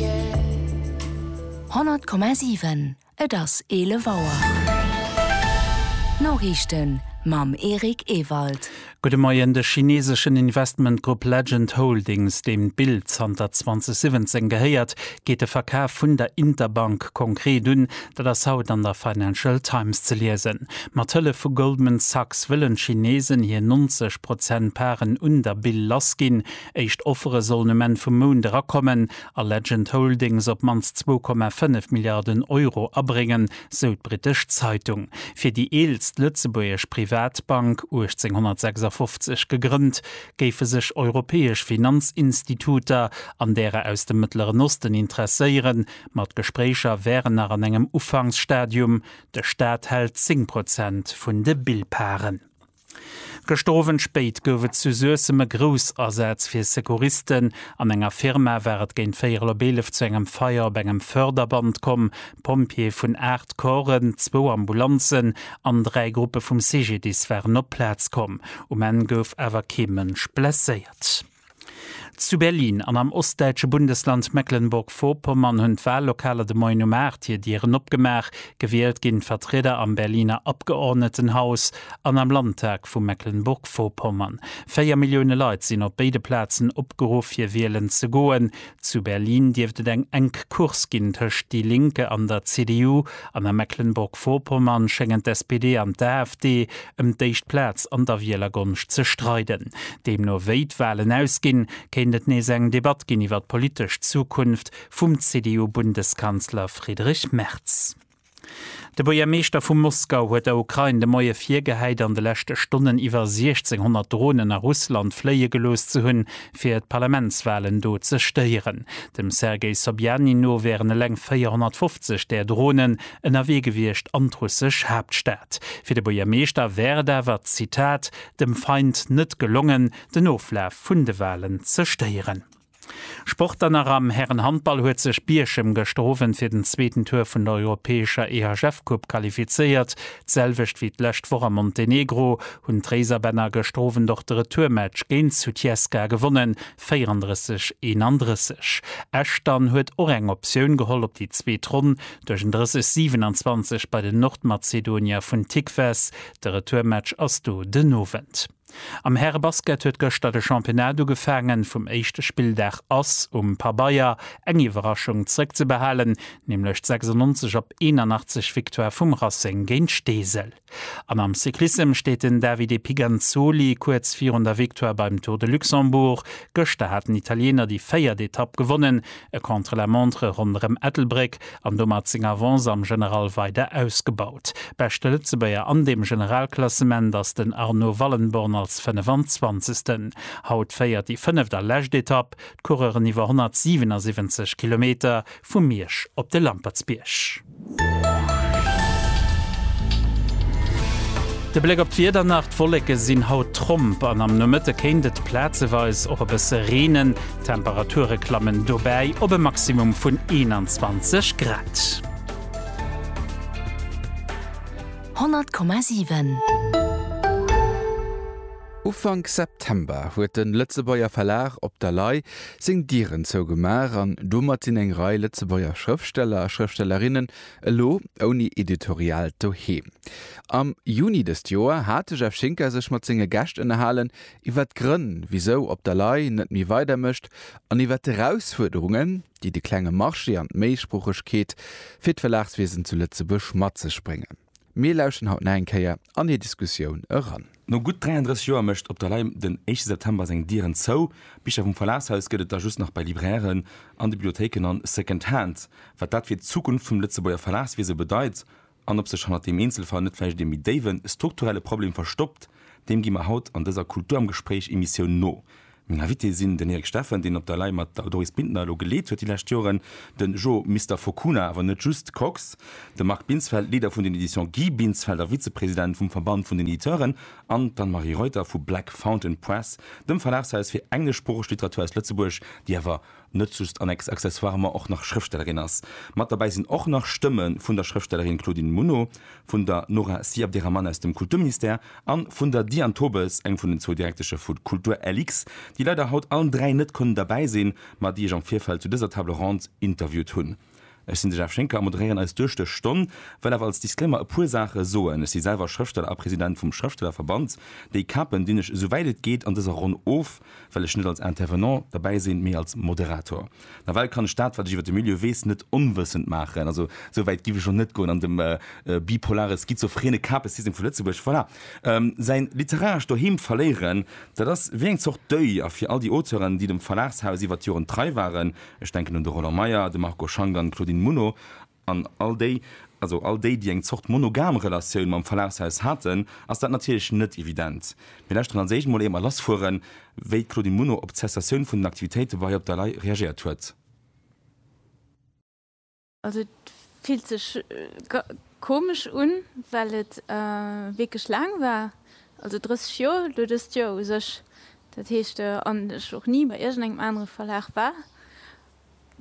100,7 Et ass 11 Auer. D'Noriichten mam Eric Ewald. Gudde Moien, De chineeseschen Investmentgrupp Legend Holdings, deem d'Bild zanter 2017 gehéiert, geet de Verkaf vun der Interbank konkret un. Dat ass haut an der Financial Times ze liesen. Mat Hëllef vu Goldman Sachs wëllen d'Chineesen hir 90 Prozent Paren un der Bil lassginn. Éischt Offere sollen um Enn vum Mount erakommen a Legend Holdings op d'mannst zwou Komma fënnef Milliarden Euro abréngen, sou d'brittesch Zeitung. Fir déi eelst lëtzebuergesch Privatbank, 1856 gegrënnt, géife sech europäesch Finanzinstituter an därer aus dem Mëttleren Osten interesséieren, ma d'Gespréicher wären nach an engem Ufanksstadium. De Staat hält zéng Prozent vun de Billparen. Gëschter Owend spéit gouf et zu Suessem e Groussasaz fir Secouristen. An enger Firma war et géint véierel op eelef zu engem Feier op engem Förderband komm. Pompjeeë vun 8 Corpsen, zwou Ambulanzen an dräi Gruppe vum CGDIS waren op d'Plaz komm. Um Enn gouf awer kee Mënsch blesséiert. Zu Berlin an am ostdäitsche Bundesland Mecklenburg-Vorpommern hunn d'Wallokaler de Moien um 8 hir Dieren opgemaach. Gewielt ginn d'Vertrieder am Berliner Abgeordnetenhaus an am Landtag vu Mecklenburg-Vorpommern. Véier Millioune Leit sinn op béide Plazen opgeruff fir wielen ze goen. Zu Berlin dierft et eng enk Course ginn tëscht déi Linke an der CDU, an a Mecklenburg-Vorpommern schéngen d'SPD an d'AfD ëm d'éischt Plaz an der Wielergonscht ze streiden. Deemno wéi d'Walen ausginn, kéint et nees eng Debatt ginn iwwer d'politesch Zukunft vum CDU-Bundeskanzler Friedrich Merz. De Buergermeeschter vu Moskau huet der Ukrain de Moie virgehäit, an de leschte Stonnen iwwer 1.600 Dronen a Russland fléie gelooss ze hunn, fir d'Parlamentswalen do ze stéieren. Dem Sergei Sobjanin no wären eleng 450 där Dronen ënnerwee gewiescht an d'russesch Haaptstad. Fir de Buergermeeschter wär et awer, Zitat, dem Feind net gelongen, den Oflaf vun de Walen ze stéieren. Sport dann nach, Am Härenhandball huet sech Bierchem gëschter Owend fir den zweeten Tour vun der europäescher EHF-Coupe qualifizéiert. D'selwecht wéi d'lescht Woch a Montenegro hunn d'Réiserbänner gëschter Owend och de Retourmatch géint Sutjeska gewonnen, 34, 31. Esch dann huet och eng Optioun geholl op déi zweet Ronn duerch en 30, 27 bei den Nordmazedonier vun Tikves. De Retourmatch ass do den Owend. Am Härebasket huet gëschter de Championnat ugefaangen. Vum éischte Spilldag ass um Pabeier eng Iwwerraschung zrëckzebehalen, nämlech d'96 op 81 Victoire vum Racing géint Steesel. An am Cyclissem steet den Davide Piganzoli kuerz virun der Victoire beim Tour de Luxembourg. Gëschter haten Italiener déi véiert Etapp gewonnen, E Contre-la-montre ronderëm Ettelbréck an domat seng Avance am General weider ausgebaut. Beschte Lëtzebuerger an deem Generalklassement ass den Arnaud Wallenborn als 25. Haut féiert déi fënneft a lescht Etapp d'Coureuren iwwer 177 Kilometer vu Miersch op de Lampertsbierg. De Bléck op d'Wieder nach, D'Wolleke sinn haut tromp an am Nomëtte kéint et plazeweis och e bësse reenen. D'Temperature klammen dobäi op e Maximum vun 21 Grad. 100,7. Ufank September huet de Lëtzebuerger Verlag Op der Lay seng Dieren zougemaach an domat sinn eng Rei Lëtzebuerger Schrëftsteller a Schrëftstellerinnen elo ouni Editorial doheem. Am Juni dëst Joer hat de Jeff Schinker sech mat senge Gäscht ënnerhalen iwwer d'Grënn, wisou Op der Lay net méi weider mécht an iwwer d'Erausfuerderungen, déi de klenge Marché an d'Méisproochegkeet fir d'Verlagswiesen zu Lëtzebuerg mat sech bréngen. Mir lauschten haut nach eng Kéier an hir Diskussioun eran. No gutt 33 Joer mécht Op der Lay den éischte September seng Dieren zou. Bicher vum Verlagshaus gëtt et der just nach bei Librairen an de Bibliothéiken a Second Hand. Wat dat fir d'Zukunft vum Lëtzebuerger Verlagswiese bedeit an ob sech hannert deem Eenzelfall net vläicht ee méi déiwe strukturelle Problem verstoppt, deem gi mer haut an dëser Kultur am Gespréich Emissioun no. Meng Invitée sinn den Erik Steffen, deen op der Lay mat der Doris Bintner elo geleet huet déi lescht Joren, de Jo Mister Fokuna, awer net just, Kox, de Marc Binsfeld, Leader vun den Editions Guy Binsfeld a Vizepresident vum Verband vun den Editeuren, an d'Anne-Marie Reuter vu Black Fountain Press, dem Verlagshaus fir engleschsproocheg Literatur aus Lëtzebuerg, déi awer net just an accessoirement och nach Schrëftstellerin ass. Mat derbäi sinn och nach Stëmme vun der Schrëftstellerin Claudine Muno, vun der Nora Si Abderrahmane aus dem Kulturministère a vun der Diane Tobes, eng vun den zwou Direktesche vu Kultur-LX, déi leider haut allen dräi net konnen derbäi sinn, ma déi ech am Virfeld zu dëser Table ronde interviewt hunn. Ech sinn de Jeff Schinker a moderéieren eis duerch dës Stonn. Wëll awer als Disclaimer e puer Saache soen. Ech si selwer Schrëftsteller a President vum Schrëftstellerverband. Déi Kapen dinn ech esou wäit et geet an dëser Ronn of, well ech net als Intervenant derbäi sinn, mee als Moderator. Nawell kann ech dat, wat ech iwwer de Milieu weess, net onwëssend maachen. Also esou wäit giff ech elo net goen an dem bipolare schizophrene Kapesystem vu Lëtzebuerg, voilà, säin literarescht Doheem verléieren. Dat ass wéi eng Zort Deuil a fir all déi Auteuren, déi dem Verlagshaus iwwer d'Joren trei waren, Ech denken un de Roland Meyer, de Marco Schank an d'Claudine Muno an all déi, also all déi, déi eng Zort monogam Relatioun mam Verlagshaus haten, ass dat natierlech net evident. Mir lauschteren als éischt mol éier lass fueren, wéi d'Claudine Muno op d'Cessatioun vun den Aktivitéite bei Op der Lay reagéiert huet. Also et fillt sech komesch un, well et wierklech laang war, also 30 Joer, elo dëst Joer u sech, dat heescht an ech och ni bei iergendengem anere Verlag war.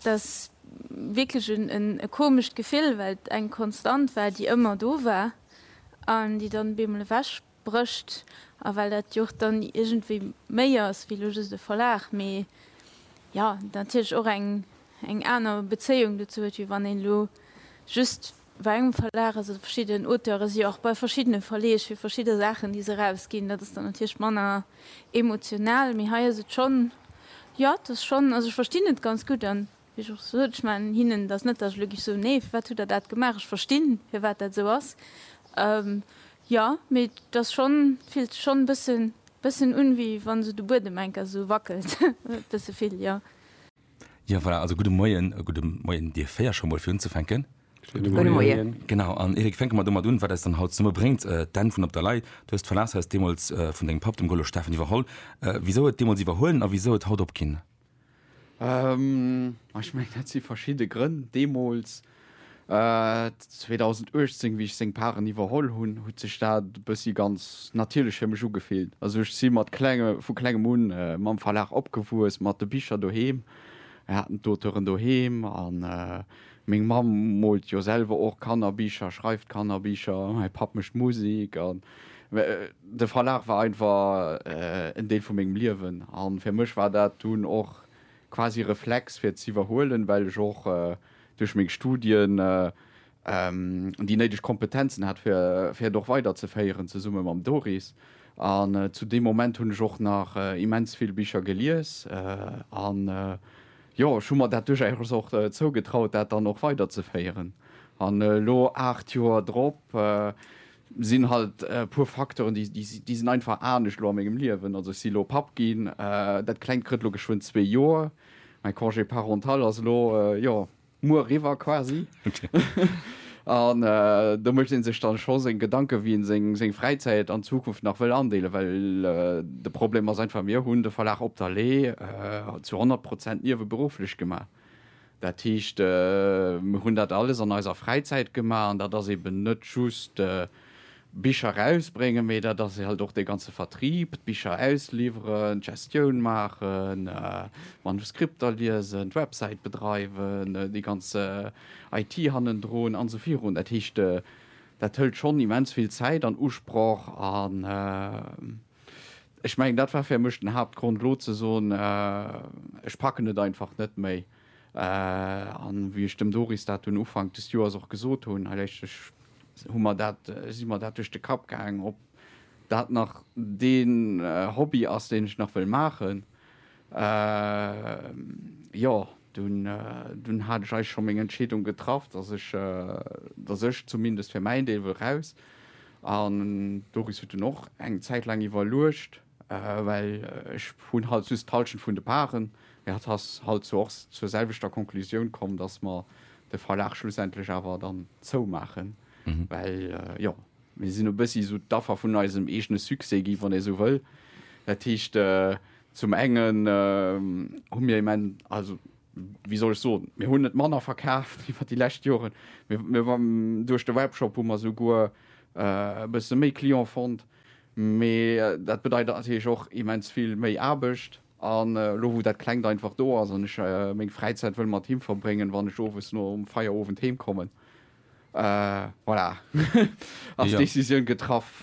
Dat ass wierklech e komescht Gefill, well et eng Konstant war, déi ëmmer do war an déi dann op eemol ewech. Brécht, a well dat jo och dann iergendwéi méi ass wéi elo just e Verlag, mee jo natierlech och eng eng aner Bezéiung dozou huet, wéi wann een elo just bei engem Verlag ass oder verschidden Auteuren si jo och bei verschiddene Verleeg fir verschidde Saachen, déi se erausginn. Dat ass dann natierlech manner emotional, mee hei ass et schonn, jo et ass schonn, also ech verstinn et ganz gutt. Wéi ech och sot, ech man hinnen dat net, datt ech elo géif soen, nee, firwat hutt Der dat gemaach, ech verstinn, firwat dat esou ass. Jo, mee et ass schonn, et fillt sech schonn e bësse, bëssen un, wéi wa sou de Buedem enker esou wackelt, e bësse vill, jo. Jo, voilà, also gudde Moien. Gudde Moien Dir véier, scho mol fir unzefänken. Gudde Moien. Genau, an Eric, fänke mer domat un, wat eis dann haut zesumme bréngt, d'Enn vun Op der Lay. Du hues d'Verlagshaus deemools vun dengem Papp, dem Golo Steffen, iwwerholl. Wisou et deemools iwwerhuelen a wisou et haut opginn Ech mengen, dat si verschidde Grënn. Deemools, 2018, wéi ech seng Paren iwwerholl hunn, huet sech dat e bëssi ganz natierlech fir mech ugefillt. Also ech si mat klenge, vu klengem un mam Verlag opgewuess, mat de Bicher doheem. Mir haten d'Auteuren doheem a meng Mamm moolt jo selwer och Kannerbicher, schreift Kannerbicher, mäi Papp mécht Musek. De Verlag war einfach en Deel vu mengem Liewen a fir mech war dat dunn och quasi e Reflex fir et z'iwwerhuelen, well ech och duerch meng Studien déi néideg Kompetenzen hat fir et och weiderzeféieren, zesumme mam Doris. An zu deem Moment hunn ech och nach immens vill Bicher gelies an jo, ech hu mer dat duerchaus och zougetraut dat dann och weiderzeféieren. An elo 8 Joer drop. Sinn halt e puer Facteuren, déi, déi, déi sinn einfach anescht elo a mengem Liewen. Also ech si elo Papp ginn, dat Klengt kritt elo geschwënn zwee Joer, mäi Congé parental ass elo, jo, muer eriwwer quasi. An do mécht ee sech dann scho seng Gedanken, wéi een seng, seng Fräizäit an Zukunft nach wëll andeelen, well de Problem ass einfach, mir hunn de Verlag Op der Lee zu 100 Prozent nieweberufflech gemaach. Dat heescht, mir hunn dat alles an eiser Fräizäit gemaach an dat ass eben net just Bicher erausbréngen, mee dat ass halt och dee ganze Vertrieb, d'Bicher ausliwweren, d'Gestioun maachen, d'Manuskripter liesen, d'Websäit bedreiwen, déi ganz IT hannendrun an esou virun. Dat heescht, dat hëlt schonn immens vill Zäit an Usproch an Ech mengen, dat war fir mech den Haaptgrond, elo ze soen, ech packen et einfach net méi. An wéi ech dem Doris dat dunn Ufank des Joers och gesot hunn, hei léischtlech, hu mer dat, si mer dat duerch de Kapp gaangen, ob dat nach deen Hobby ass, deen ech nach wëll maachen. Jo, dunn hat ech eigentlech scho meng Entscheedung getraff, dass ech, dass ech zumindest fir mäin Deel wëll raus. An d'Doris huet dunn och eng Zäit laang iwwerluecht, well ech hunn halt just d'Halschent vun de Parten. Mee hatt ass halt zwar och zur selwechter Konklusioun komm, dass mer de Verlag schlussendlech awer dann zoumaachen, well jo, Mir sinn e bëssi esou d'Affer vun eisem eegene Succès gi, wann ee sou wëll. Dat heescht, zum engen hu mir immen, also wéi soll ech soen, mir hunn net manner verkaaft iwwer déi lescht Joren. Duerch de Webshop hu mer souguer e bësse méi Client fonnt. Mee dat bedeit natierlech och immens vill méi Aarbecht. An elo wou dat Klengt einfach do ass an ech meng Fräizäit wëll mat him verbréngen, wann ech owes nom Feierowend heem kommen, Voilà, ass d'Decisioun getraff.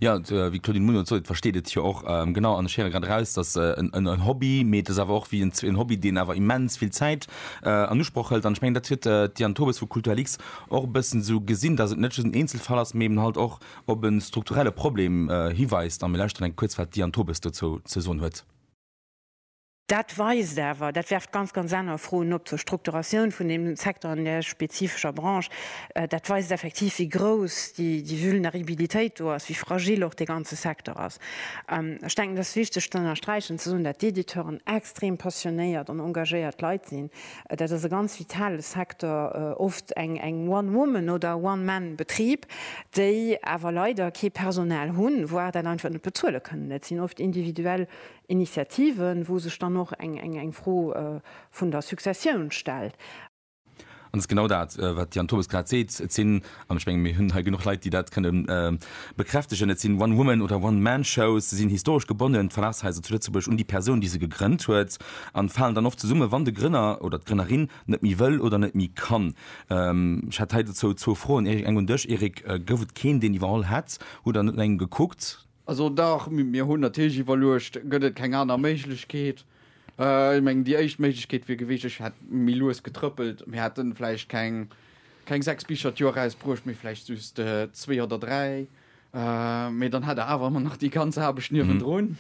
Jo, wéi d'Claudine Muno et sot, et versteet et jo och. Genau, an ech héiere grad eraus, dass en Hobby, mee et ass awer och wéi en Hobby, deen awer immens vill Zäit an Usproch hëlt. An ech mengen, dat huet d'Diane Tobes vu Kulturlix och e bëssen esou gesinn, dass et net just en Eenzelfall ass, mee eben halt och op e strukturelle Problem hiweist. A mir lauschteren eng kuerz, wat d'Diane Tobes dozou ze soen huet. Dat weist awer, dat werft ganz, ganz aner Froen op zur Strukturatioun vun deem Secteur an där spezifescher Branche, dat weist effektiv, wéi grouss déi Vulneribilitéit do ass, wéi fragil och dee ganze Secteur ass. Ech denken, et ass wichteg ze ënnersträichen, ze soen, dat d'Editeuren extrem passionéiert an engagéiert Leit sinn. Dat ass e ganz vitale Secteur, oft eng One-Woman oder One-Man-Betrib, déi awer leider kee Personal hunn, voire dat einfach net bezuele kënnen. Dat sinn oft individuell Initiativen, wou sech dann och eng Fro vun der Successioun stellt. An dat ass genau dat, wat Yann Tobes grad seet. Et sinn, an ech mengen, mir hunn hei genuch Leit, déi dat kënne bekräftegen, et sinn One-Woman oder One-Man-Shows. Se sinn historesch gebonnen, d'Verlagshaiser zu Lëtzebuerg, un déi Persoun, déi se gegrënnt huet, a falen dann oft zesummen, wann de Grënner oder d'Grënnerin net méi wëll oder net méi kann. Ech hätt hei dozou zwou Froen, Eric. Eng un dech, Eric, Gouf et keen, deen iwwerholl hätt? Hutt Der net no engem gekuckt? Also dach, mir hunn natierlech iwwerluecht, gëtt et keng aner Méiglechkeet. Ech mengen, déi éischt Méiglechkeet wier gewiescht, ech hätt méi lues getrëppelt, mir hätte vläicht keng, keng sechs Bicher d'Joer erausbruecht, mee vläicht just zwee oder dräi. Mee dann hätt Der awer ëmmer nach déi ganz Aarbecht niewendrun,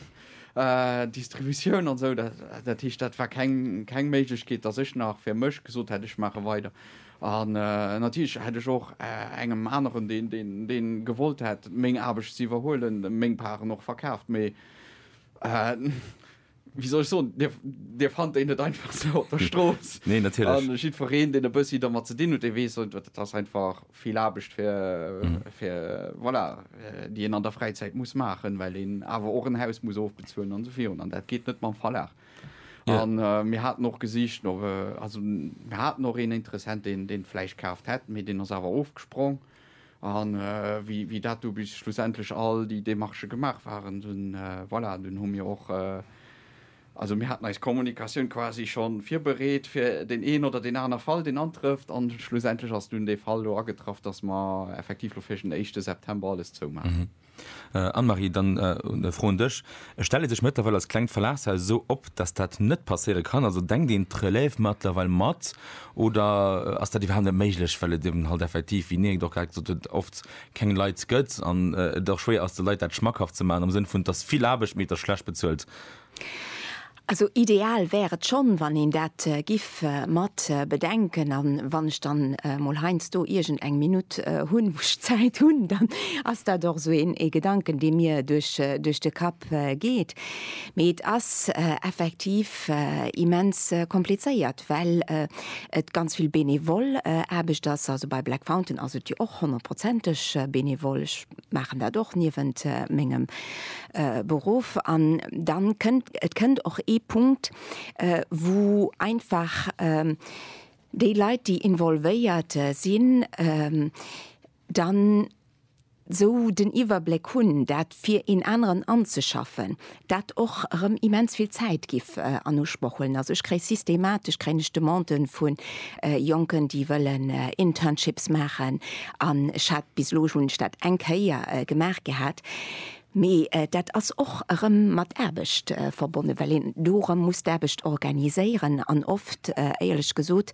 Distributioun an esou. Dat heescht, dat war keng, keng Méiglechkeet, datt ech nach fir mech gesot hätt, ech maache weider. An natierlech hätt ech och engem aneren, deen gewollt hätt meng Aarbecht ze iwwerhuelen, meng Parten och verkaaft. Mee wéi soll ech soen, Dir fannt déi net einfach sou op der Strooss. Nee, natierlech. A jiddwereen, deen e bëssi domat ze dinn huet, dee weess, dat ass einfach vill Aarbecht, fir, voilà, déi een an der Fräizäit muss maachen, well een awer och en Haus muss ofbezuelen an esou virun. An dat geet net mam Verlag. Yeah. An äh, mir haten och gesicht no äh, also mir haten och een Interessent den den Fleisch kaaft hätt, mee den ass awer ofgesprong. An äh, wie, wie dat du bis schlussendlech all die Demarche gemacht waren, dann äh, voilà, dann hu mir och äh, also mir hatten eis Kommunikatioun quasi schon virbereet fir den een oder den aner Fall den antrëfft an schlussendlech ass nun de Fall lo agetraff, dass ma effektiv lo fir den 1. September alles zou machen. Mhm. Anne-Marie, dann e Fro un dech. Stellt ee sech mëttlerweil als klengt Verlagshaus esou op, datt dat net passéiere kann? Also denkt een d'Relève mëttlerweil mat oder ass dat iwwerhaapt net méiglech, well et eben halt effektiv, wéi Nienk et och grad gesot huet, oft keng Leit gëtt an et och schwéier ass, de Leit dat schmackhaft ze maachen am Sënn vun, et ass vill Aarbecht, mee et ass schlecht bezuelt? Also ideal wär et schonn, wann een dat giff mat bedenken. A wann ech dann mol heiansdo iergend eng Minutt hunn, wou ech Zäit hunn, dann ass dat och esou ee Gedanken, dee mir duerch de Kapp geet. Mee et ass effektiv immens komplizéiert, well et ganz vill benevol Aarbecht ass. Also bei Black Fountain ass et jo och honnertprozenteg benevol. Ech maachen dat och niewent mengem Beruff an dann kënnt, et kënnt och ee Punkt, wou einfach déi Leit, déi involvéiert sinn, dann esou den Iwwerbléck hunn, dat fir een aneren anzeschaffen. dat och erëm immens vill Zäit giff an Usproch huelen. Also ech kréie systematesch kréien ech Demanden vu Jonken, déi wëllen Internships maachen an ech hat, bis elo hunn ech dat eng Kéier gemaach gehat, mee dat ass och erëm mat Aarbecht verbonnen, well een do erëm muss d'Aarbecht organiséieren an oft, éierlech gesot,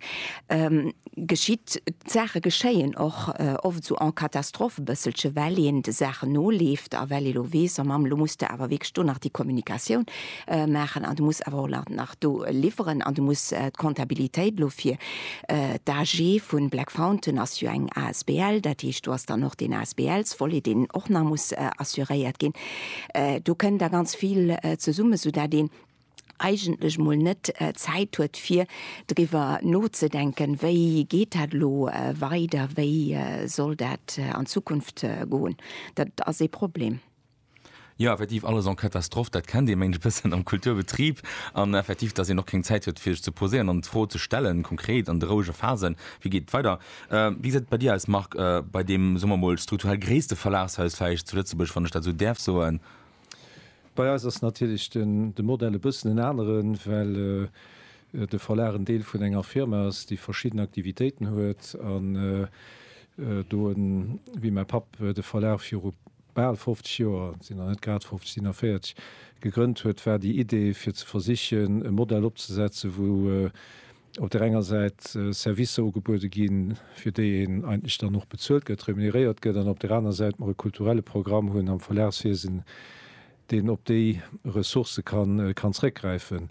geschitt, d'Saache geschéien och oft esou en catastrophe e bësselche well een de Saachen noleeft a well ee lo weess, oh Mamm, lo muss de awer wierklech do nach déi Kommunikatioun maachen an du muss awer och nach do liwweren an du muss d'Kontabilitéit lo fir d'AG vu Black Fountain ass jo eng asbl, dat heescht do ass dann och deen ASBL-sVolet deen och nach muss assuréiert ginn, do kënn da ganz vill zesummen, soudatt een eigentlech mol net Zäit huet fir driwwer nozedenken, wéi geet dat elo weider, wéi soll dat an Zukunft goen. Dat ass ee Problem. Jo, effektiv, alles en catastrophe, dat kennt ee mengt e bëssen am Kulturbetrib. An effektiv, dass een och keng Zäit huet fir sech ze poséieren an d'Fro ze stellen, konkret an de rouege Phasen, wéi geet et weider. Wéi gesäit et bei dir aus Marc, bei deem, soe mer mol, strukturell gréisste Verlagshaus vläicht zu Lëtzebuerg, wann ech dat esou däerf soen? Bei eis ass natierlech de Modell e bëssen en aneren, well de Verlag en Deel vun enger Firma ass, déi verschidden Aktivitéiten huet. An do en, wéi mäi Papp de Verlag viru bal 50 Joer, sinn nach net grad 50, sinn nach 40, gegrënnt huet, war déi Idee, fir ze versichen, e Modell opzesetzen, wou op där enger Säit Servicer ugebuede ginn, fir déi een eigentlech dann och bezuelt gëtt, remuneréiert gëtt, an op där aner Säit mer e kulturelle Programm hunn am Verlagswiesen, deen op déi Ressourcë kann zréckgräifen.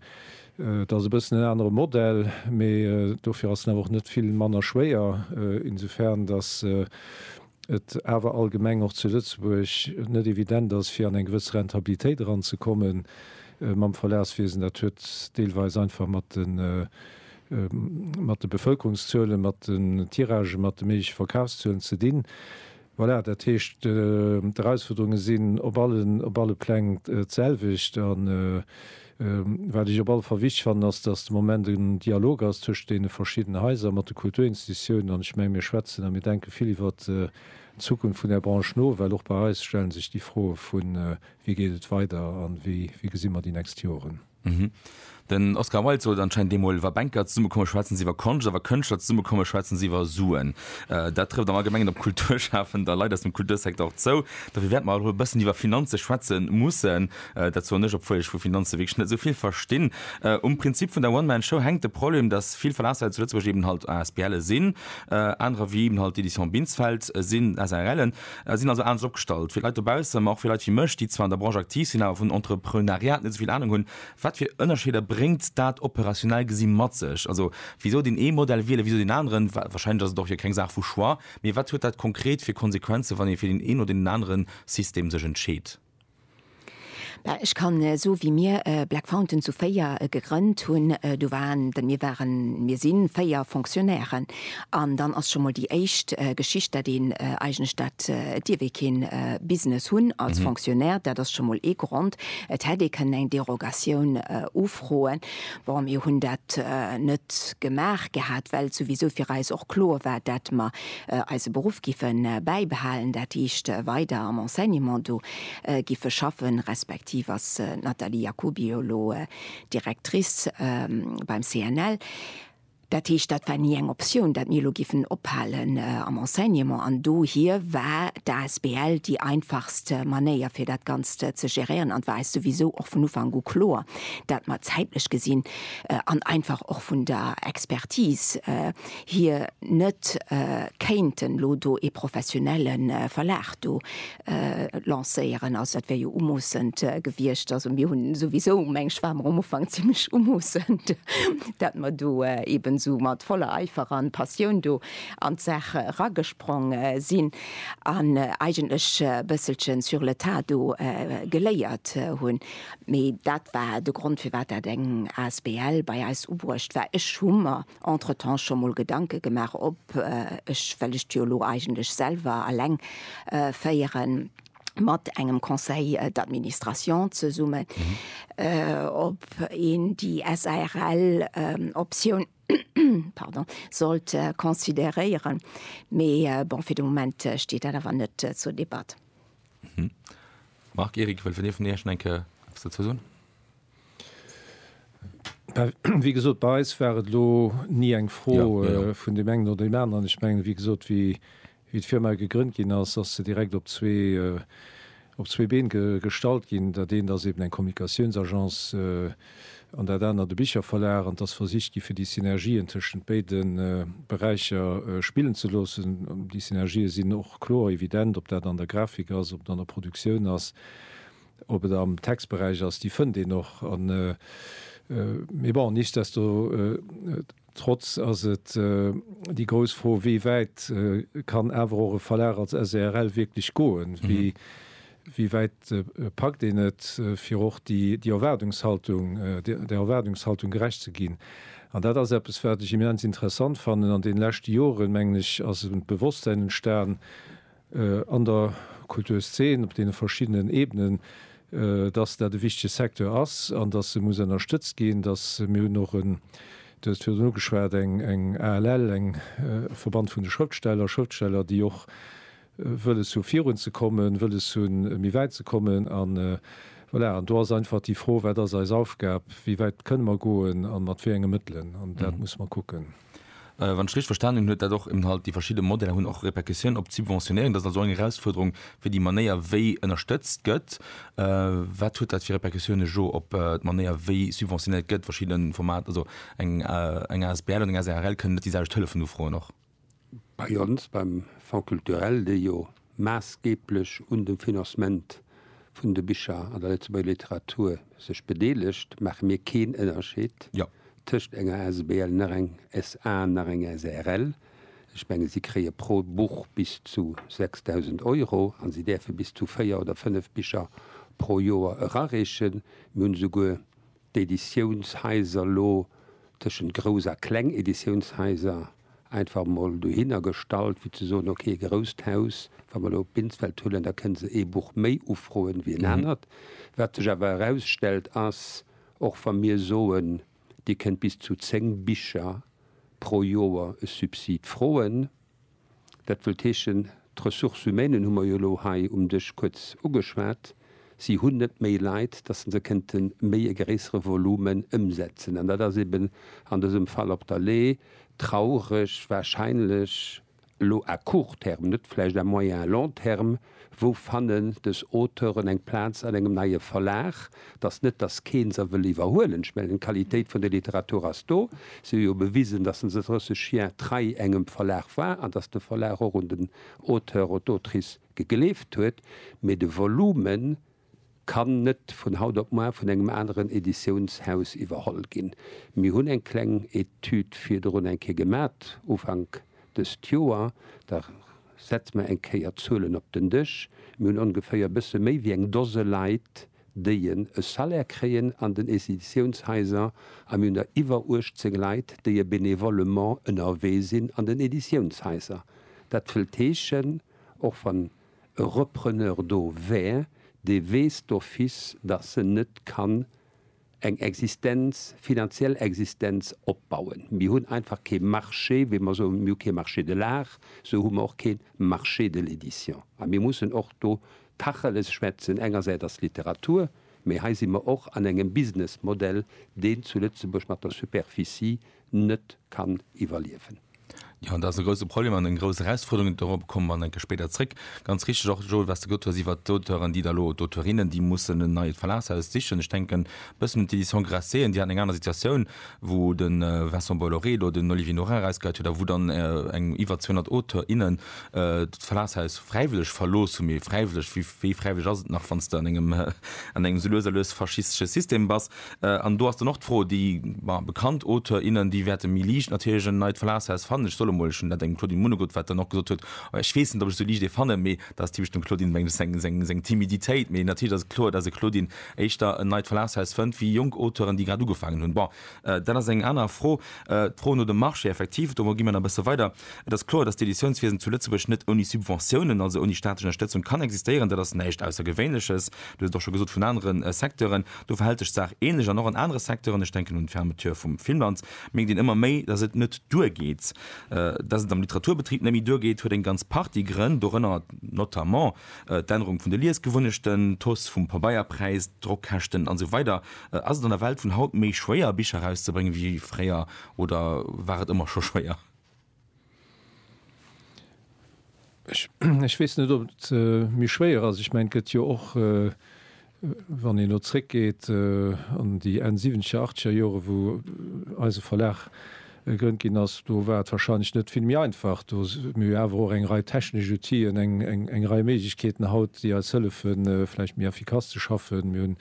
Dat ass e bëssen en anere Modell, mee dofir ass en awer och net vill manner schwéier, insofern datt et awer allgemeng och zu Lëtzebuerg net evident ass, fir an eng gewëss Rentabilitéit eranzekomme mam Verlagswiesen. Dat huet deelweis einfach mat de Bevëlkerungszuelen, mat den Tiragen, mat de méigleche Verkafszuelen ze dinn. Voilà, dat heescht, d'Erausfuerderunge sinn op alle Pläng d'selwecht. Wat ech op alle Fall wichteg fannen, ass, dass de Moment en Dialog ass tëscht deene verschiddenen Haiser, mat de Kulturinstitutiounen. An ech mengen, mir schwätzen a mir denke vill iwwert d'Zukunft vun där Branche no, well och bei eis stelle sech déi Froe vu wéi geet et weider a wéi gesi mer déi nächst Joren. Den Oscar Wilde sot anscheinend deemol, Wa Banker zesummekomme schwätzen se iwwer Konscht, a wa Kënschtler zesummekomme schwätzen se iwwer Suen. Dat trëfft am Allgemengen op Kulturschafender Leit aus dem Kultursecteur och zou. Dofir wäerte mer erëm e bëssen iwwer Finanze schwätze mussen. Dat soen ech, obwuel ech vu Finanze wierklech net esou vill verstinn. Um Prinzip vun der One-Man-Show hänkt de Problem, dass vill Verlagshaise zu Lëtzebuerg eben halt ASBLe sinn, anerer, wéi eben halt d'Éditions Binsfeld, sinn SARLen, sinn also anescht opgestallt. Fir d'Leit dobausse, ma och fir Leit wéi mech, déi zwar an der Branche aktiv sinn, awer vun Entrepreunariat net esou vill Anung hunn, Wat fir Ënnerscheeder bréngt dat operationell gesi mat sech? Also, wisou deen ee Modell wielen, wisou deen aneren? Wahrscheinlech ass et och jo keng Saach vu Choix, mee wat huet dat konkret fir Konsequenzen, wann ee fir deen een oder deen anere System sech entscheet? Ech kann soe wéi mir Black Fountain zu véier gegrënnt hunn, do waren, mir waren, mir si véier Fonctionnairen an dann ass scho mol déi éischt Geschicht, dat een eigentlech, dat et dierf ee kee Business hunn als Fonctionnaire, dat ass scho mol ee Grond. Et hätt ee kënnen eng Derogatioun ufroen. Bon, mir hunn dat net gemaach gehat, well souwisou fir eis och kloer war, dat mer eise Beruff giffe bäibehalen, dat heescht weider am Enseignement do giffe schaffen, respektiv ass d'Nathalie Jacoby jo elo Directrice beim CNL. Dat heescht, dat war ni eng Optioun, dat mir elo giffen ophalen am Enseignement. An dohier war d'asbl déi einfachst Manéier, fir dat Ganzt ze geréieren. An et war eis souwisou och vun Ufank u kloer, dat mer zäitlech gesinn an einfach och vun der Expertise, hir net kéinten elo do ee professionelle Verlag do lancéieren. Also dat wär jo umoossend gewiescht. Also mir hunn souwisou, mengen ech, ware mer am Ufank zimlech umoossend, dat mer do eeben esou mat voller Eifer an Passioun do an d'Saach eragesprong sinn an eigentlech e bësselchen sur le tas do geléiert hunn. Mee dat war de Grond, firwat dat eng asbl bei eis ubruecht war. Ech hu mer Entretemps scho mol Gedanke gemaach ob ech, well ech jo elo eigentlech selwer alleng féieren, mat engem Conseil d'administration zesummen, ob een déi SARL Optioun, pardon, sollt consideréieren, mee bon, fir de Moment steet dat awer net zur Debatt. Marc, Eric, wëll vun Iech enke eppes dozou soen? Wéi gesot, bei eis war et elo ni eng Fro vun deem engen oder deem aneren. Ech mengen, wéi gesot, wéi d'Firma gegrënnt ginn ass, ass se direkt op zwee Been gestallt ginn. Dat eent ass eben eng Kommunikatiounsagence an dat anert e Bicherverlag. An et ass versicht gi fir déi Synergien tëschent béide Beräicher spillen ze loossen. Déi Synergië sinn och kloer, evident, ob dat an der Grafik ass, ob et an der Produktioun ass. Ob et am Textberäich ass, déi fënnt een och. Mee bon, nichtsdestotrotz ass et déi grouss Fro, wéi wäit kann awer och e Verlag als SRL wierklech goen? Wéi wäit packt een et, fir och där Erwaardungshaltung gerecht ze ginn? An dat ass eppes, wat ech immens interessant fannen. An deene leschte Joren, mengen ech, ass e Bewosstsäin entstan, an der Kulturszen op deene verschiddenen Ebenen, dass dat e wichtege Secteur ass an dass e muss ënnerstëtzt ginn. Dass, mir hunn och en, Du hues et virdrun ugeschwat, eng ALL, e Verband vun de Schrëftsteller, Schrëftsteller, déi och wëlles hu virun ze kommen, wëlles hunn méi wäit ze kommen. A voilà, an do ass einfach déi Fro, wat ass eis Aufgab, wéi wäit kënne mer goen a mat wéi enge Mëttelen, an dat musse mer kucken. Wann ech richteg verstanen hunn, huet dat och eben halt, déi verschidde Modeller hunn och Répercussiounen op d'Subventionéierung. Dat ass also eng Erausfuerderung fir déi Manéier wéi ënnerstëtzt gëtt. Wat huet dat fir Répercussiounen jo op d'Manéier wéi subventionéiert gëtt, verschidde Formater, also eng asbl an eng asrl kënnen net déi selwecht Hëllefen ufroen och? Bei ons, beim Fonds culturel, dee jo maassgeeblech un dem Financement vun de Bicher an der Lëtzebuerger Literatur sech bedeelegt, maache mir keen Ënnerscheed tëscht enger Asbl nach eng SA nach eng SARL. Ech menge si kréie pro Buch bis zu 6.000 Euro a si däerfe bis zu véier oder fënnef Bicher pro Joer erareechen. Mir hunn esouguer d'Editiounshaiser lo tëschent grouss a kleng Editiounshaiser einfach emol dohinner gestallt, fir ze soen, ok, e grousst Haus, wa mer elo Binsfeld huelen, da kënne se ee Buch méi ufroen wéi en anert. Wat sech awer erausstellt, ass, och wa mir soen, Dir kënnt bis zu zéng Bicher pro Joer e Subsid froen, Dat wëllt heeschen, d'Ressources humaines hu mer jo elo hei um Dësch kuerz ugeschwat, si hunn net méi Leit, dass se se kënnte méi e gréissere Volumen ëmsetzen. An dat ass eben an dësem Fall op der Lay traureg, wahrscheinlech elo à court terme, net vläicht à moyen, long terme, Wou fannen dës Auteuren eng Plaz an engem neie Verlag? Et ass net, datt keen se wëll iwwerhuelen. Ech mengen, d'Qualitéit vun der Literatur ass do. Si hu jo bewisen, datt se se 30 Jar trei engem Verlag war an datt de Verlag och un den Auteur oder d'Autrice gegleeft huet. Mee de Volumen Kann net vun haut op muar vun engem aneren Editiounshaus iwwerholl ginn. Mir hunn eng kleng Etüd virdrun eng Kéier gemat, Ufank dëst Joer. Da setze mer eng Kéier d'Zuelen op den Dësch. Mir hunn ongeféier e bësse méi wéi eng Dose Leit, déien e Salaire kréien an den Editiounshaiser a mir hunn der iwwer 18 Leit, déie bénévolement ënnerwee sinn an den Editiounshaiser. Dat wëllt heeschen, och wann. e Repreneur do wär, dee weess d'office, dass en net kann eng Existenz, finanziell Existenz opbauen. Mir hunn einfach kee Marché, wéi mer soen, mir hu kee Marché de l'art, sou hu mer och kee Marché de l'édition. A mir mussen och do Tacheles schwätzen. Engersäit ass d'Literatur, mä hei si mer och an engem Businessmodell, deen zu Lëtzebuerg mat der Superficie net kann iwwerliewen. Jo, dat ass e grouse Problem an eng grouss Erausfuerderung. Dorobber komme mer enke spéider zréck. Ganz richtig och, Joel, wat s de gesot hues iwwert d'Auteuren, déi da elo, d'Auteurinnen, déi mussen en neit Verlagshaus sichen. Ech denken e bëssen un d'Éditions Grasset, déi haten eng aner Situatioun, wou de Vincent Bolloré elo den Olivier Norin erausgeheit huet a wou dann eng iwwer 200 Auteurs, innen d'Verlagshaus fräiwëlleg verlooss hunn. Mee fräiwëlleg, wéi fräiwëlleg ass et nach, wann s de an engem, an engem esou lues a lues faschistesche System bass? An do ass dann och d'Fro, déi bekannt Auteur, innen, déi wäerte méi liicht natierlech en neit Verlagshaus fannen. Ech soll emol, ech hunn dat engem Claudine Munegut, wat dann och gesot huet, ech weess net, ob ech esou liicht ee fannen, mee dat ass typesch dem Claudine menglegs seng Timiditéit. Mee natierlech ass et kloer, datt e Claudine éischter en neit Verlagshaus fënnt wéi jonk Auteuren, déi grad ugefaangen hunn. Bon, dat ass eng aner Fro. D'Fro no dem Marché, effektiv, domat gi mer nach e bësse weider. Et ass kloer, datt d'Editiounswiesen zu Lëtzebuerg net ouni Subventiounen, also ouni staatlech Ënnerstëtzung, kann existéieren. Dat ass näischt Aussergewéinleches, du hues et och scho gesot, vun anere Secteuren. Do verhält sech d'Saach ähnlech an och an anere Secteuren. Ech denken un d'Fermeture vum Filmland. Mierkt een ëmmer méi, datt et net duergeet. Datt et am Literaturbetrib net méi duergeet, huet eng ganz Partie Grënn, dorënner notamment d'Ännerung vun de Liesgewunnechten, d'Hausse vum Pabeierpräis, d'Drockkäschten an esou weider. Ass et an der Welt vun haut méi schwéier, Bicher erauszebréngen, wéi fréier oder war et ëmmer scho schwéier? Ech weess net, ob et méi schwéier ass. Ech mengen, et gëtt jo och, wann een elo zréckgeet an déi Enn siwwenzeger, achtzeger Jore wou eise Verlag gegrënnt ginn ass, do war et warscheinlech net vill méi einfach. Do hu mir awer och eng Rei technesch Outien, eng Rei Méiglechkeeten haut, déi eis hëllefe vläicht méi effikass ze schaffen. Mir hunn,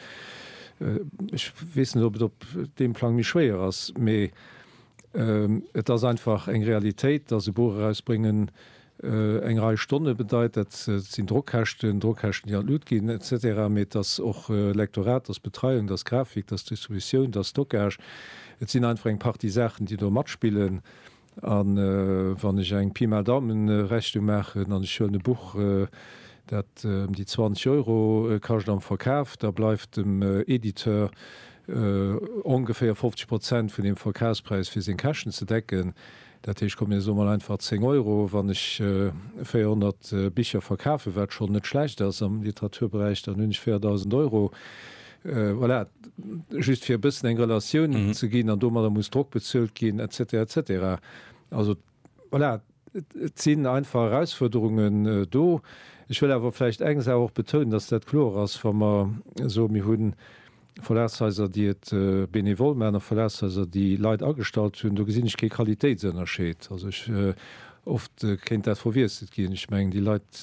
ech weess net, ob et op deem Plang méi schwéier ass, mee Et ass einfach eng Realitéit, dass e Buch erausbréngen eng Rei Stonne bedeit. Dat sinn Drockkäschten, Drockkäschten, déi an d'Lut ginn, et cetera. Mee et ass och Lektorat, et ass Betreiung, et ass Grafik, et ass Distributioun, et ass Stockage. Et sinn einfach eng Partie Saachen, déi do matspillen. A wann ech eng Pi mal Daumen-Rechnung maachen an ech huelen e Buch, dat ëm déi 20 Euro kascht am Verkaf, da bleift dem Editeur ongeféier 50 Prozent vun him Verkafspräis fir seng Käschten ze decken. Dat heescht, komm mir soe mol einfach 10 Euro, wann ech 400 Bicher verkafen, wat schonn net schlecht ass am Literaturberäich, dann hunn ech 4.000 Euro. Voilà, just fir e bëssen eng Relatioun ze ginn. An domadder muss Drock bezuelt ginn, et cetera, et cetera. Also Voilà, et sinn einfach Erausfuerderungen do. Ech wëll awer vläicht eng Saach och betounen, dass dat kloer ass, wa mer soen, mir hu Verlagshaiser, déi et benevol maachen, a Verlagshaiser, déi Leit agestallt hunn, do gesinn ech kee Qualitéitsënnerscheed. Also ech, oft kéint dat verwiesselt ginn. Ech mengen, déi Leit,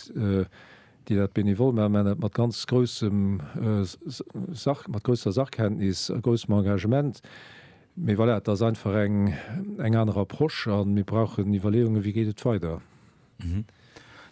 déi dat benevol maachen, maachen dat mat ganz groussem, mat grousser Sachkenntnis a groussem Engagement. Mee voilà, et ass einfach eng, eng aner Approche a mir brauchen Iwwerleeungen, wéi geet et weider.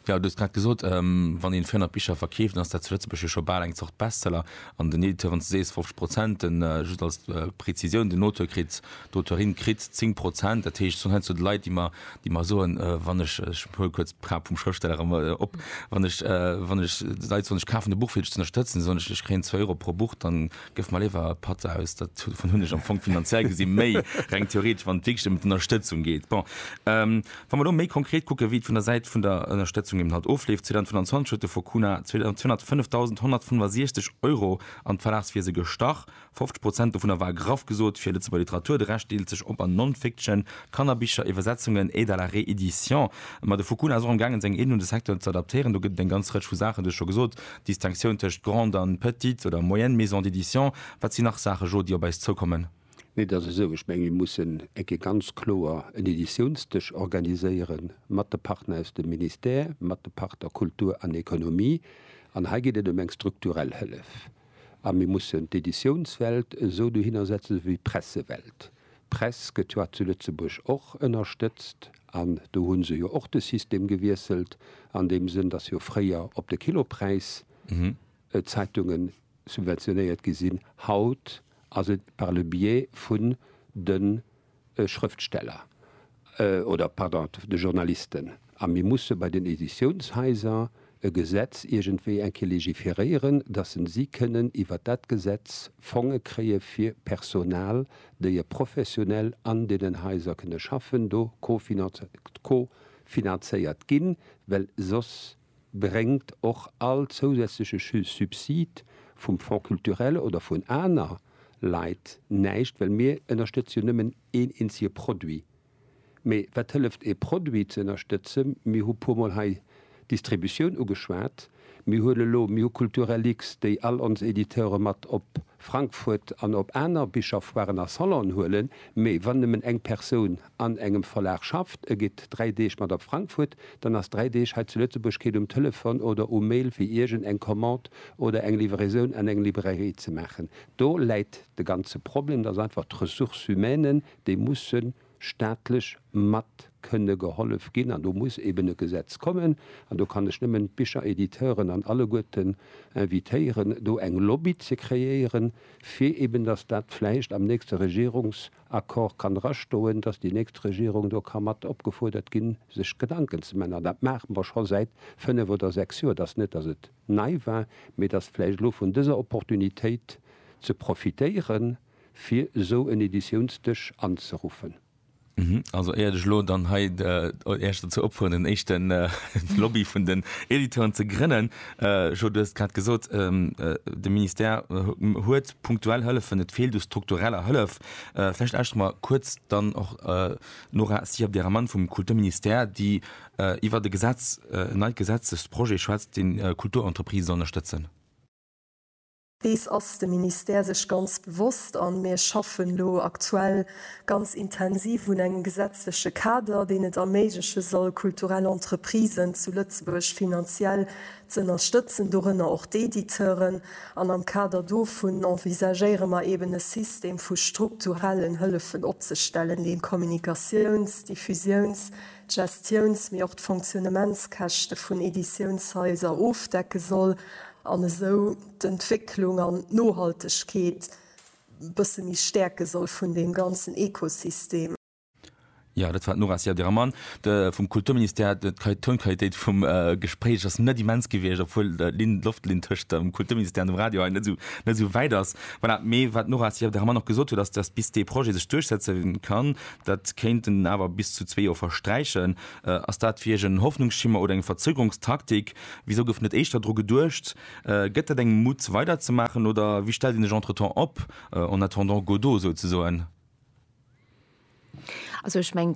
Jo, du hues grad gesot, wann een 400 Bicher verkeeft, dann ass dat zu Lëtzebuerg jo scho bal eng Zort Bestseller. An den Editeuren, s du sees 50 Prozent, den, just als Prezisioun, den Auteur kritt, d'Auteurin kritt 10 Prozent. Dat heescht, et sinn heiansdo d'Leit, déi mer, déi mer soen, wann ech, ech huele kuerz d'Cap vum Schrëftsteller erëm op, wann ech, wann ech d'Leit soen, ech kafen e Buch fir dech z'ënnerstëtzen, soen ech, ech kréien zwou Euro pro Buch, dann Gëff mer léiwer e Patt aus. Dat dovun hunn ech am Fong finanziell gesi méi, reng theoretesch, wann et wierklech ëm d'Ënnerstëtzung geet. Bon, wa mer elo méi konkret kucken, wéi et vun der Säit vun der Ënnerstëtzung eben halt ofleeft, 2025 huet de Fonds Cuna 205.165 Euro an d'Verlagswiese gestach. 50 Prozent dovunner war graff gesot fir Lëtzebuerger Literatur, de Rescht deelt sech op an Non-Fiction, Kannerbicher, Iwwersetzungen, Aide à la réédition. Ma de Fonds Cuna ass och am gaangen, seng Aiden un de Secteur ze adaptéieren. Do gëtt et eng ganz Rëtsch vu Saachen, du hues scho gesot, Distinctioun tëscht grande an petite oder moyenne maison d'édition, wat sinn nach Saache Jo, déi op eis zoukommen? Nee, et ass esou, ech menge mir mussen eng Kéier ganz kloer en Editiounsdësch organiséiere mat de Partner aus dem Ministère, mat de Partner Kultur an Economie. An hei geet et ëm eng strukturell Hëllef. A mir mussen d'Editiounswelt esou dohinner setzen, esou wéi d'Pressewelt. D'Press gëtt jo hat zu Lëtzebuerg och ënnerstëtzt an do hu se jo och de System gewiesselt an deem Sënn, datt jo fréier op de Kilopräis d'Zeitungen subventionéiert gi sinn. Haut ass et par le biais vun de Schrëftsteller. oder, pardon, de Journalisten, a mir musse bei den Editiounshaiser e Gesetz iergendwéi eng Kéier légiféréieren, dass se si kënnen iwwert dat Gesetz Fonge kréie fir Personal, déi e professionell an deenen Haiser kënne schaffen, do co-finanzéiert ginn, well soss bréngt och all zousätzleche Subsid vum Fonds culturel oder vun aner Leit näischt, well mir ënnerstëtze jo nëmmen een eenzege Produit. Mee wat hëlleft ee Produit ze ënnerstëtzen? Mir hu puer mol hei d'Distributioun ugeschwat. Mir hunn elo, mir hu Kulturellix, déi all ons Editeure mat op Frankfurt an op aner Bicherfoiren a Salonen huelen, mee wann nëmmen eng Persoun, an engem Verlag schafft, e geet dräi Deeg mat op Frankfurt, dann ass dräi Deeg hei zu Lëtzebuerg keet um Telefon oder um Mail fir iergend eng Commande oder eng Livraisoun an eng Librairie ze maachen. Do läit de ganze Problem, dass einfach d'Ressources humaines, déi musse staatlech mat kënne gehollef ginn an do muss eben e Gesetz kommen. An do kann ech nëmmen d'Bicheréditeuren an alleguerten invitéieren do eng Lobby ze kreéieren, fir eben dass dat vläicht am nächste Regierungs. Accord kann drastoen, dass déi nächst Regierung do ka mat opgefuerdert ginn, sech Gedanken ze man. An dat maache mer scho säit fënnf oder sechs Joer. Et ass net, dass et nei war, mee et ass vläicht elo vun dëser Opportunitéit ze profitéieren, fir esou en Editiounsdësch anzeruffen. Also éiert ech elo dann hei Äech dozou opfuerderen, en éischten Lobby vun den Editeuren ze grënnen, Jo, du hues et grad gesot, de Ministère huet punktuell Hëllefen, et feelt u struktureller Hëllef. Vläicht lauschteren mer kuerz dann och d'Nora Sierp-Diarmand vum Kulturministère, déi iwwert e Gesetz, en neit Gesetzesprojet schwätzt, dee Kulturentreprisen soll ënnerstëtzen. Dees ass de Ministère sech ganz bewosst an mir schaffen elo aktuell ganz intensiv un engem gesetzleche Kader, deen et erméigleche soll, kulturell Entreprisen zu Lëtzebuerg finanziell z'ënnerstëtzen, dorënner och d'Editeuren. An am Kader dovun envisagéiere mer eeben e System vu strukturellen Hëllefen opzestellen, dee Kommunikatiouns-, Diffusiouns-, d'Gestiouns mee och d'Fonctionnementskäschte vun Editiounshaiser ofdecke soll an esou d'Entwécklung an d'Nohaltegkeet e bësse méi stäerke soll vun deem ganzen Ekosystem. Jo, dat war d'Nora Siadermann vum Kulturministère. D'Tonqualitéit vum Gespréich ass net immens gewiescht, obwuel d'Loftlinn tëscht dem Kulturministère an dem Radio hei net esou wäit ass. Voilà, mee wat d'Nora Siadermann och gesot huet, ass, dass bis dee Projet sech duerchsetze kann, Dat kéinten awer bis zu zwee Joer versträichen. Ass dat fir Iech en Hoffnungsschimmer oder eng Verzögerungstaktik? Wisou gouf net éischter dru geduecht? Gëtt dat engem Mut weiderzemaachen oder wéi stellt een sech entretemps op, en attendant Godot souzesoen? Also ech meng,